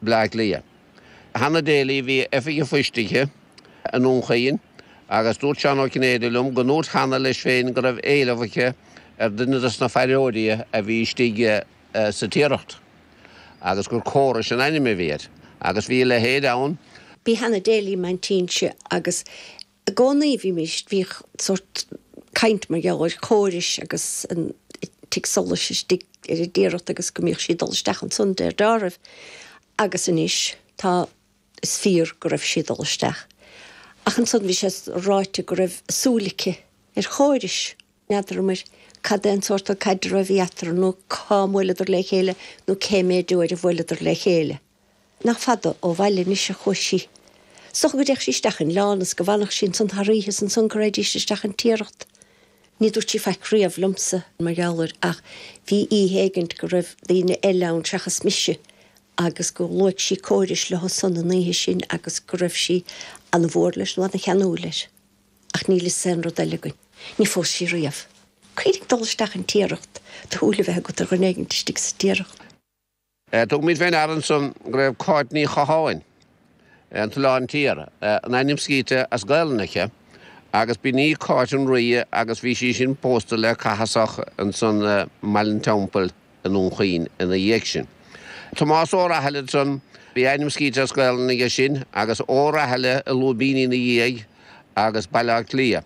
Bleá Cliath. Hannah Daly a bhí oifig an phoist aici i nDún Chaoin agus dúirt Seán Ó Cinnéide liom go ndúirt Hannah leis féin go raibh éileamh aici ar dhuine dos na faireoirí a bhí istigh sa Tiaracht agus gur Corish an ainm a bhí air. Agus bhí a leithéid ann. B'í Hannah Daly m'aintín-se agus I gcónaí bhímíst, bhíodh sórt caint mar gheall ar Chorish agus an tigh solais istigh ar an dTiaracht agus go mbíodh sí ag dul isteach ansan, de réir dealraimh, agus anois tá, is fíor go raibh sí ag dul isteach. Ach ansan bhí sé ráite go raibh súil aici ar Chorish. N'fheadramar cad é an sórt caidreamh a bhí eatarthu nó cá mbuaileadar le chéile nó cé méid uair a bhuaileadar le chéile. Nach fada ó bhaile anois a chuaigh sí. 'S dócha go dtéadh sí isteach an Oileán is go bhfanfadh sí ansan thar oíche is ansan go raghadís isteach an Tiaracht. Ní dúirt sí faic riamh liomsa mar gheall air ach bhí oíche éigint go raibh daoine eile ann seachas mise agus gur luaigh sí Corish leo san an oíche sin agus go raibh sí ana mhór leis nó ana cheanúil air. Ach níl 'fhios aon rud eile againn. Ní phós sí riamh. Cuir ag dul isteach an Tiaracht, do shúil a bheith agat ar dhuine éigint istigh sa Tiaracht. Tugaimid fé ndeara ansan go raibh Cáit Ní Chatháin, an tOileán Tiar, an ainm scríte as Gaelainn aici, agus b'in í Cáit an Rí agus bhí sí sin pósta le Cathasach ansan i mBaile'n Teampaill. i nDún Chaoin ina dhiaidh sin. Tomás Ó Rathaille ansan bhí a ainm scríte as Gaelainn aige sin agus O'Rahilly i lúibíní ina dhiaidh agus Baile Átha Cliath.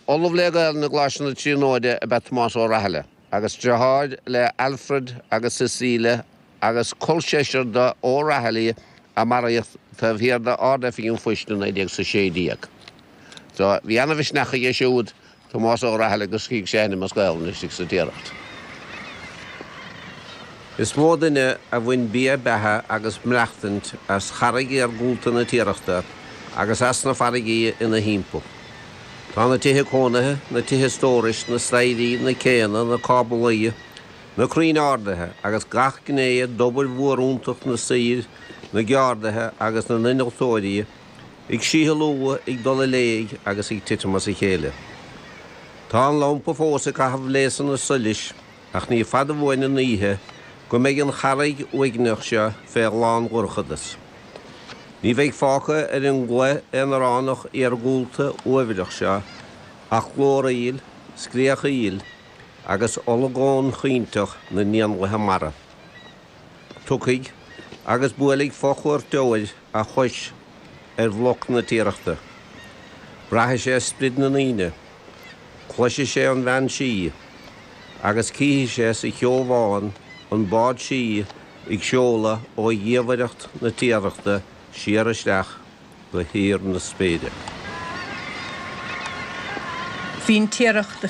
Ollamh le Gaelainn i gColáiste na Tríonóide ab ea Tomás Ó Rathaille agus driotháir le Alfred agus Cecile agus col seisir do O'Rahilly a maraíodh taobh thiar d'Ard-Oifig an Phoist i 1916. So bhí ana-mhisneach aige siúd. Tomás Ó Rathaille gur scrígh sé a ainm as Gaolainn istigh sa Tiaracht. Is mó duine a bhain bia beatha agus maireachtaint as charraig iargúlta na Tiarachta agus as na farraigí ina thimpeall. Tá na tithe cónaithe, na tithe stórais, na staighrí, na céanna, na cáblaí, na crainn ardaithe agus gach gné d'obair mhíorúilteach na saor, na gceardaithe agus na n-innealtóirí, ag síothlú, ag dul i léig agus ag titim as a chéile. Tá an lampa fós ag caitheamh léasanna solais ach ní fada uainn an oíche go mbeidh an charraig uaigneach seo fé lán-dhorchadas. Ní bheidh fágtha ar an gcloich aonaránach iargúlta uaibhreach seo ach glóraíl, scréachaíl agus olagón caointeach na n-éanlaithe mara. Tiocfaidh agus buailfidh fo-chuairteoir. a chois ar bhloc na Tiarachta. Braithfidh sé sprid na ndaoine, cloisfidh sé an bhean sí agus cífidh sé sa cheo bhán an bád sí ag seoladh ó dhiamhaireacht na Tiarachta siar isteach go híor na spéire. Bhí an Tiaracht a'